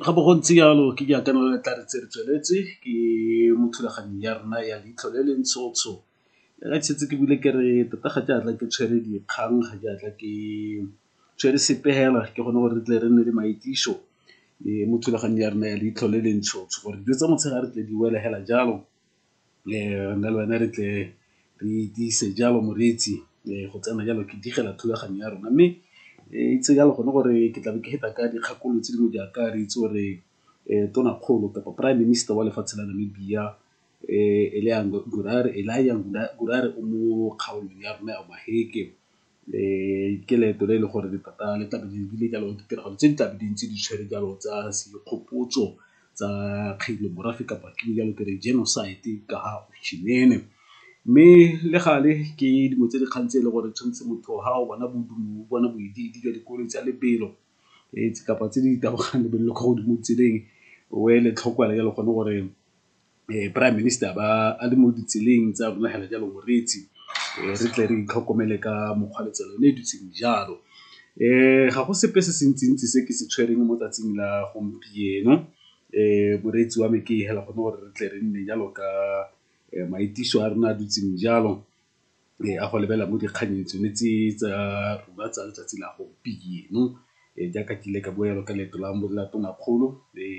Ga bo go ntse jalo ke dikakanyo le tla re tse re tsweletse ke mo thulaganyong ya rona ya leitlho le le ntsho ntsho. Ga ke setse ke buile ke re tota ga ke a tla ke tshwere dikgang ga ke a tla ke tshwere sepe fela ke gone gore re tle re nne le maitliso mo thulaganyong ya rona ya leitlho le le ntsho ntsho gore dijo tsa motshegare tle di wele fela jalo. nna le wena re tle re itiise jalo moreetsi go tsena jalo ke digela thulaganyo ya rona. Mme itse jalo gone gore ke tlabe ke feta ka dikgakololo tse dingwe jaaka re itse gore tonakgolo kapa prime minister wa lefatshe la Namibia Elijah Ngurare o mo kgaolong ya rona ya Maheke. Ke leeto le e leng gore le tota le tlabe le lebile jalo ditiragalo tse di tlabe di ntse di tshwere jalo tsa segopotso tsa kgale morafe kapa ke jalo ke re genocide ka ga . Mme le gale ke dingwe tse dikgang tse e le gore tshwanetse motho ga o bona o bona bodiidi jwa dikoloi tsa lebelo kapa tse di tabogang lebelo le ko godimo tseleng o ele tlhoko fela jalo gone gore. um prime minister ba a le mo ditseleng tsa rona hela jalo moreetsi um re tle re itlhokomele ka mokgwa le tsela yone e dutseng jalo um ga go sepe se se ntsi-ntsi se ke se tshwereng mo tsatsing la gompieno um moreetsi wa me ke hela gone gore re tle re nne jalo ka maitiso a rona a dutseng jalo a go lebelela mo dikgannyeng tsone tse tsa rona tsa letsatsi la gompieno. Jaaka ke ile ka bua jalo ka leeto la la tonakgolo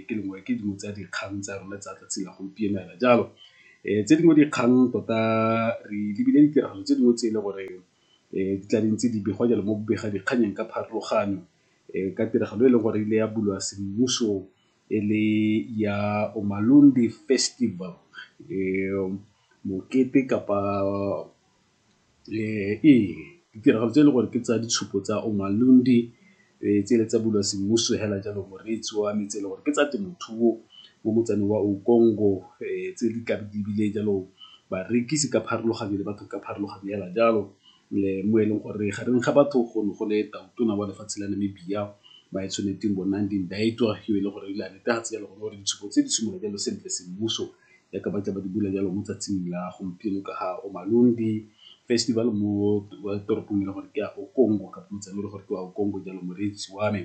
ke lengwe ke dingwe tsa dikgang tsa rona tsa tsatsi la gompieno fela jalo. Tse dingwe dikgang tota re lebile ditiragalo tse dingwe tse e le gore di tla di ntse di begwa jalo mo bobega dikgannyeng ka pharologano ka tiragalo e leng gore e ile ya bulwa semmuso. e le ya Umalundi Festival mokete kapa ee ditiragalo tse e leng gore ke tsa ditshupo tsa Umalundi tse le tsa bulwa semmuso fela jalo moreetsi wa me tse e le gore ke tsa temothuo mo motsaneng wa tse di tla di bile jalo barekisi ka pharologanyo le batho ka pharologanyo fela jalo. mo e leng gore gareng ga batho go ne go le tau tona wa lefatshe la Namibia Moaitshwanetseng Bonandi Ndaitwah yo e leng gore o ile a netefatsa jalo gone gore ditshupo tse di simolola jalo sentle semmuso jaaka ba tla ba di bula jalo mo tsatsing la gompieno ka ga Omalundi festival mo toropong e le gore ke a Okongo kapa motseng e le gore ke a Okongo jalo moreetsi wa me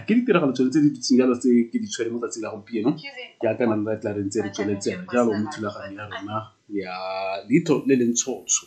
ke ditiragalo tsone tse di dutseng jalo tse ke di tshwere mo tsatsing la gompieno ke akana le tla re ntse re tsweletseng jalo mo thulaganyo ya rona ya leitlho le le ntshotsho.